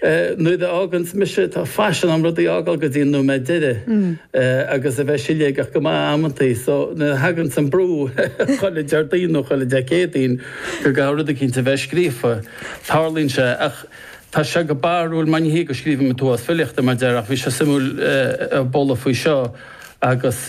Nuair a fhágaim ag mise, tá faisean a'm rudaí a fhágáil go dtí an nóiméad deiridh agus a bheith siléigeach go maith amantaí so nuair a thaganns an brú chuile Déardaoin nó chuile Dé Céadaoin go gcaithfidh rud eicínt a bheith scríofa, tarlaíonn sé. Ach tá sé go barrúil mar ní hé go scríobhaim an t-uafás filíochta mar a déarfá ach bhí sé suimiúil a ghabháil faoi seo agus.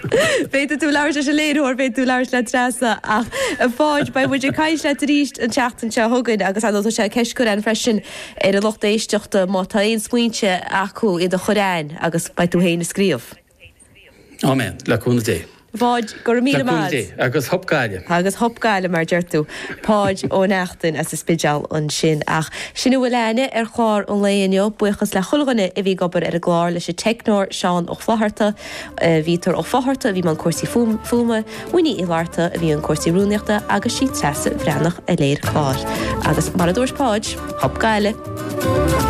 Féadfaidh tú labhairt leis an léiritheoir, féadfaidh tú labhairt le Treasa ach a Pháid, beidh muid ag caint leat arís an tseachtain seo chugainn agus ar ndóigh tá sé ceist curtha againn freisin ar an lucht éisteachta má tá aon smaointe acu iad a chur chugainn agus beidh tú féin ag scríobh. Áiméan, le cúnamh Dé. Pháid, go raibh míle maith agat. Agus hup Gaillimh. Agus hup Gaillimh mar a deir tú. Páid Ó Neachtain as an Spidéal ansin. Ach sin a bhfuil againne ar chlár an lae inniu. Buíochas le chuile dhuine a bhí ag obair ar an gclár, leis an teicneoir Seán Ó Flaithearta, Peter Ó Fátharta a bhí i mbun cúrsaí fuaime, Winnie Uí Fhlatharta a bhí i mbun cúrsaí rúnaíochta agus sí Treasa Bhreathnach a léirigh an clár. Agus mar a dúirt Páid, Hup Gaillimh!